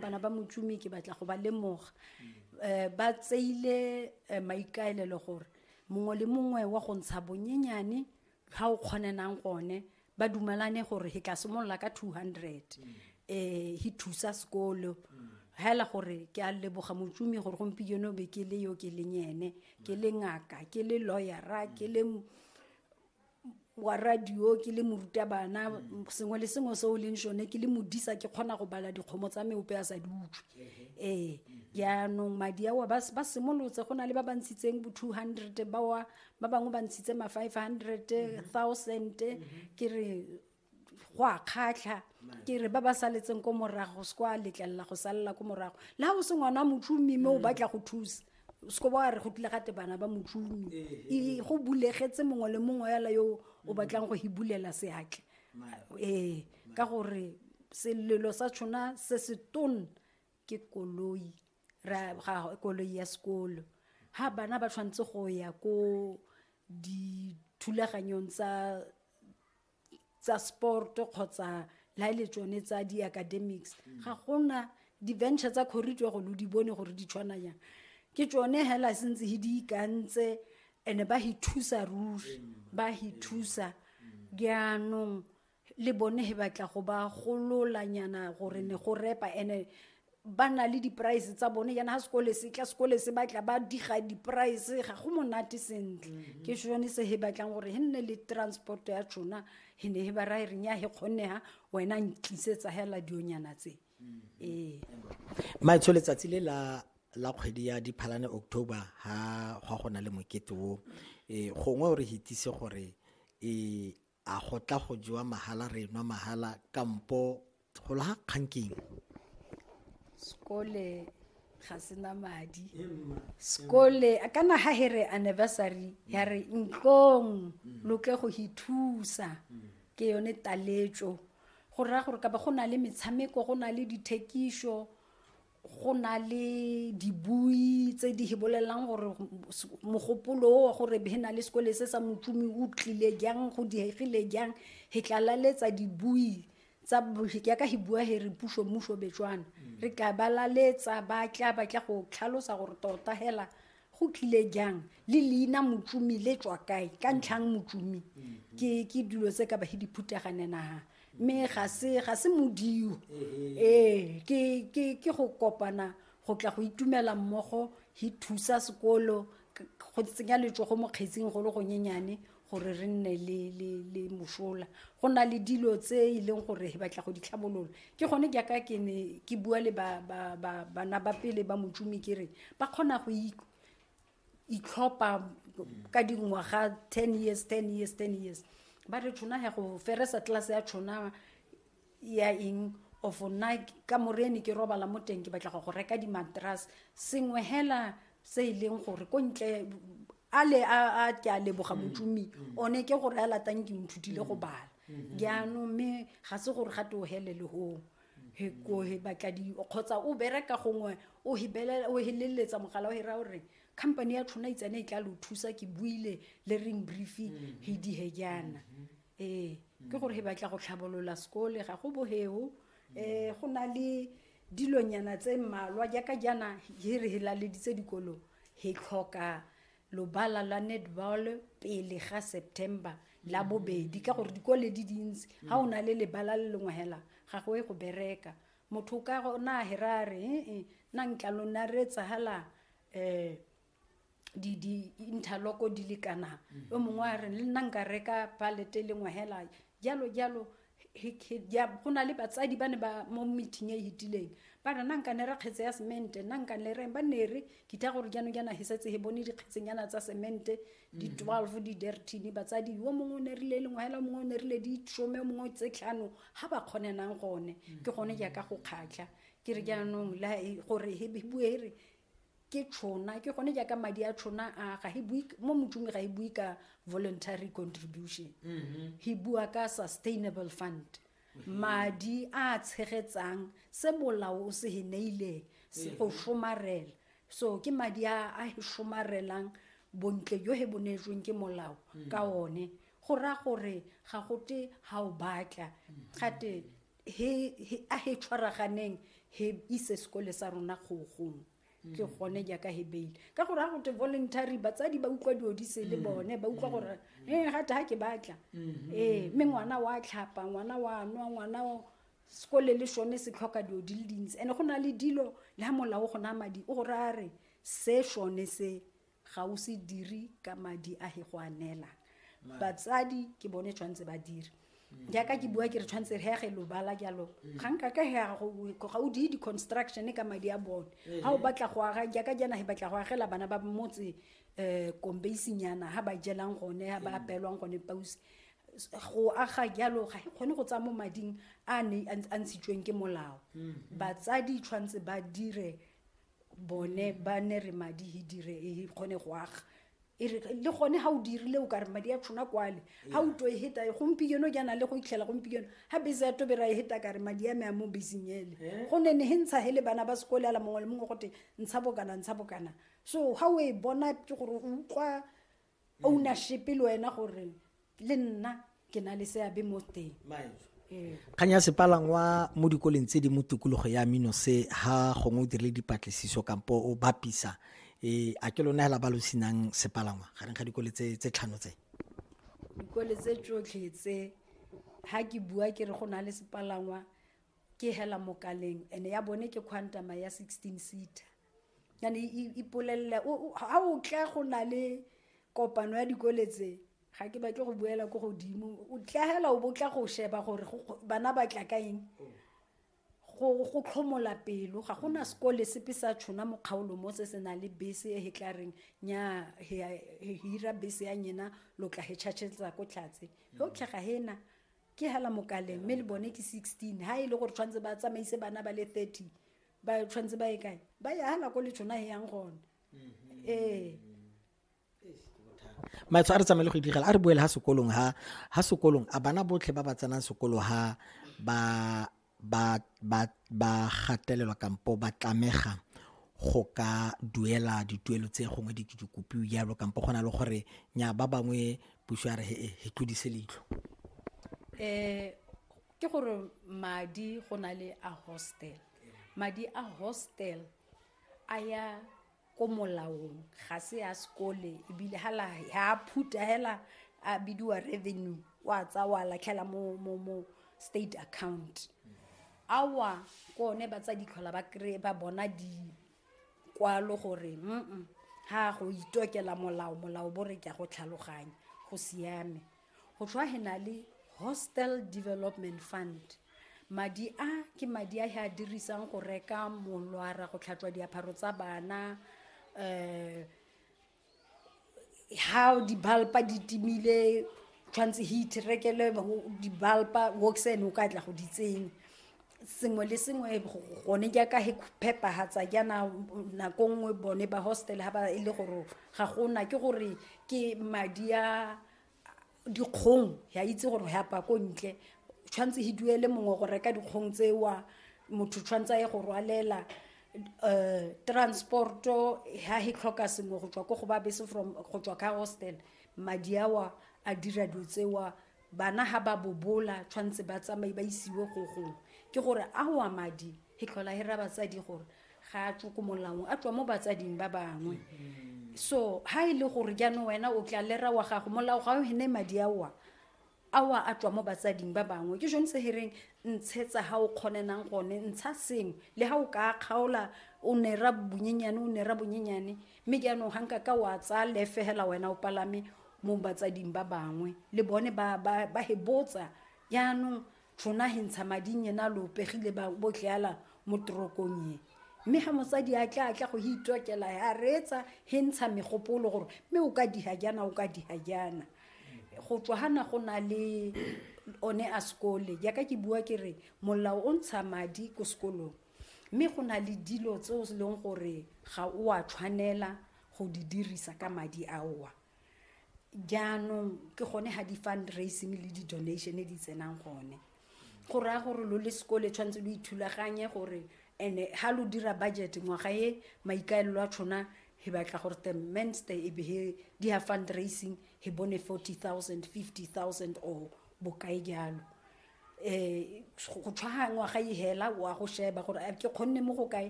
bana ba motšomi ke batla go ba lemoga um ba tseile eh, maikaelelo gore mongwe le mongwe wa go ntsha bonyenyane ga o kgonenang gone ba dumelane gore he ka simolola ka 200 um eh, he thusa sekolo hela gore ke a leboga motšomi gore gompieno be ke le yo ke leng ene ke le ngaka ke le lawyera ke le wa radio ke le morutabana mm. sengwe le sengwe se o leng sone ke le modisa ke kgona go bala dikgomo tsa me ope a sa di utswe ee jaanong madi ao ba simolotse go na le ba ba ntshitseng bo two hundred bawa ba bangwe ba ntshitse ma five hundred mm-hmm. thousand mm-hmm. ke re go a kgatlha ke re ba ba saletseng ko morago se kwa letlelela go salela ko morago le ga o se ngwana motšomi mme o batla go thusa seko ba re go tlile gate bana ba motšomi e go bulegetse mongwe le mongwe yala yo o batlang go hibulela seatle ee ka gore selelo sa tshona se se tone ke koloi ra ga koloi ya sekolo ha bana ba tshwanetse go ya ko dithulaganyong tsa tsa sport kgotsa la e le tsone tsa di-academics mm. ga gona di-venture tsa corridor go lo di bone gore di tshwana yang ke tsone hela sentse he di ikantse and-e ba he thusa ruri ba he thusa jaanong le bone he batla go ba gololanyana gore ne go repa and-e ba na le di-price tsa bone yana ga sekole se tla sekole se batla ba diga di-price ga go monate sentle mm-hmm. ke sone se he batlang gore he nne le transport ya tšona he ne he ba rae reng ya he kgonega wena ntlisetsa hela dionyana tse mm-hmm. ee maetsho letsatsi le la la kgwedi ya diphalane october ha gwa go na le mokete o e gongwe o re hitise gore e A go tla go jewa mahala re nwa mahala kampo go laga kgang keng? Sekole ga sena madi. Sekole kana ha he re anniversary ya re ntlong lo tle go hi thusa ke yone taletso go raya gore ka ba go na le metshameko go na le dithekiso go na le dibui tse di bolelelang gore mogopolo o gore he na le sekole se sa motlumi o tlile jang go diegile jang he tlalaletsa dibui tsa yaka he bua he re puso mmuso betswana mm. re tla balaletsa ba tla ba tla go tlhalosa gore tota hela go tlile jang le leina motsumi le tswa kae ka ntlhang motsumi ke ke dilo tse ka bahe diphuteganenaga mme ga se ga se modio ee ke ke ke go kopana go tla go itumela mmogo hi thusa sekolo go tsenya letsogo mo kgetsing go le gonyenyane gore re nne le le le mosola go na le dilo tse e leng gore he batla go di tlhabolola ke gone ke ka ke ne ke bua le ba ba ba bana ba pele ba motšumi ke re ba kgona go itlhopha ka dingwaga ten years ten years ten years ba re tshona ya go feresa tlase ya tshona ya eng of nna ka morene ke robala mo teng ke batla go go reka di-matras sengwe hela se e leng gore ko ntle a le a ke a leboga motsomi mm. one ke gore a latang ke nthutile go mm. bala mm-hmm. jaanong mme ga se gore ga te o helele gong he ko he batla di kgotsa o bereka gongwe o hibelela o heleletsa mogala o hira gore company ya tshwana itsane e tla lo thusa ke buile le ring briefing he di he jana mm -hmm. ee ke gore he batla go tlhabolola sekole ga go boheo um eh, go na le dilonyana tse mmalwa jaaka jaana he re helaleditse dikolo he tlhoka lobala la netball pele ga september la bobedi ka gore dikole di dintsi ga o na le lebala le lengwe hela ga go e go bereka motho ka na hera re eh, eh, na ntlalo na re etsahala um eh, di di interlock di le kana o mongwe a re le nna nka reka palete e lengwe hela jalo jalo he- he- ya- go na le batsadi ba ne ba mo meeting e e hitileng ba re nna nka ne re kgetse ya semente nna nka ne re ba ne re ke tla gore jaanong jaana he setse he bone dikgetsenyana tsa semente di 12 di dertine batsadi yo mongwe o ne rile e lengwe hela o mongwe o ne rile di some o mongwe tse tlhano ga ba kgonenang gone ke gone jaaka go kgatlha ke re jaanong la e- gore he he bue he re ke tšhona ke gone jaaka madi a tšhona a ga bue mo motsong ga e bue ka voluntary contribution mm-hmm. he bua ka sustainable fund mm-hmm. madi a tshegetsang se molao o se he neileng se go mm-hmm. somarela so ke madi a a he somarelang bontle jo he bonetsweng ke molao ka one go ra gore ga gote ga o batla gate he, he, a he tshwaraganeng he ise sekole sa rona kgogong ke gone jaaka he beile ka gore ga gote voluntary batsadi ba utlwa dilo di se le bone ba utlwa gore e gate ga ke batla ee mme ngwana wa tlhapa ngwana wa nwa ngwana o- sekole le sone se tlhoka dilo di le dintsi and-e go na le dilo le ga molao go na madi o gore a re se sone se ga o se dire ka madi a he go a neela batsadi ke bone tshwanetse ba dire mm. jaaka ke bua ke re tshwanetse re yage lobala jalo mm. ga nka ka ga o die di-construction ka madi a bone eh. ga o batla go aga jaaka jana he batla go agela bana ba motse um kombeisinyana ga ba jelang gone ga ba mm. apelwang gone pause go aga jalo ga e kgone go tsaya mo mading a ne a ntshitsweng ke molao batsadi tshwanetse ba dire bone ba ne re madi he dire e kgone go aga e re le gone ga o dirile o kare madi a tshona kwale ga o to e heta e gompieno jaana le go itlhela gompieno ga bese ya tobera e heta kare madi a me a mo beseng ele Eh. go ne ne he ntsha he le bana ba sekole ala mongwe le mongwe gote ntsha bokana ntsha bokana so ga o e bona ke gore o utlwa ownership le wena gore le nna ke na le seabe mo teng ee. kgang ya sepalangwa mo dikoleng tse di mo tikologo ya mino se ha gongwe o dirile dipatlisiso kampo o bapisa um a ke lona hela ba lo senang sepalangwa gareng ga dikole tse tlhano tse dikole tse tsotlhe tse ha ke bua ke re go na le sepalangwa ke hela mokaleng and ya bone ke quantama ya sixteen seater yane ipolelele ga o tla go na le kopano ya dikole tse ga ke batle go buela ko godimo o tlagela o bo tla go sheba gore bana ba tla ka eng go tlhomola pelo ga gona sekole sepe sa tshona mo kgaolo mo se se nang le bese e tla reng nya hira bese ya nyena lo tla he tšhatšhetsa ko tlhatse ge o tlhaga hena ke hela mokaleng mme le bone ke sixteen ha e le gore tshwanetse ba tsamaise bana ba le thirty ba tshwanetse ba ye kae ba ye ha nako le tshona e yang gone mm-hmm. ee maetsho a re tsamaye le go idigela a re boele ha sekolong ha ha sekolong a bana botlhe ba ba tsenang sekolo ha ba ba ba ba gatelelwa kampo ba tlamega go ka duela dituelo tse gongwe di ke dikopiwe jalo kampo go na le gore nya ba bangwe puso ya re he tlodise leitlho um ke gore madi go na le a hostel madi a hostel a ya ko molaong ga se ya sekole ebile ha a phuta hela a bidiwa revenue wa tsa wa latlhela mo mo mo state account awa ko one ba tsa ditlhola ba kry ba bona dikwalo gore mm ha go itokela molao molao bo re ke go tlhaloganya go siame go tlhwa he na le hostel development fund madi a ke madi a he a dirisang go reka molwara go tlhatswa diapharo tsa bana um how dibalpa di timile tshwanetse heat rekele dibalpa woxen o ka tla go di tsenya sengwe le sengwe gone jaaka he phepagatsa jaana nako nngwe bone ba hostel ga ba e le gore ga gona ke gore ke madi a dikgong ya itse gore ya pa ko ntle tshwanetse he duele mongwe go reka dikgong tsewa motho tshwanetse a ye go rwalela um transporto ha he tlhoka sengwe go tswa ko go ba bese from go tswa ka hostel madi awa a dira dilo tsewa bana ha ba bobola tshwanetse ba tsamaye ba isiwe go gongwe ke gore awa madi e tlhola e ra batsadi gore ga a tswe ko molaong a tswa mo batsading ba bangwe so ha e le gore jaanong wena o tla lera wa gago molao ga o hene madi aowa awa a tswa mo batsading ba bangwe ke jone se hereng ntshetsa ha o kgonenang gone ntsha sengwe le ha o ka kgaola o nera bonyenyane o nera bonyenyane mme jaanong ga nka ka wa tsaya lefegela wena o palame mo batsading ba bangwe le bone ba hebotsa jaanong tšhona he ntsha mading yena lo pegile ba botleala mo torokong ye mme ga mosadi a tla a tla go itokela a reetsa he ntsha megopolo gore mme o ka diha jana o ka diha jana go tswa gana go na le one a sekole jaaka ke bua ke re molao o ntsha madi ko sekolong mme go na le dilo tse o leng gore ga o a tshwanela go di dirisa ka madi aowa jaanong ke gone ga di-fundraising le di-donation di tsenang gone go raya gore lo le sekole tshwanetse lo ithulaganye gore and-e ga lo dira budget ngwaga e maikaelelo a tshona he batla gore the menster e be he di ya fundraising he bone forty thousand fifty thousand or bokae jalo um go tshwaga ngwaga e hela wa go sheba gore ke kgonne mo go kae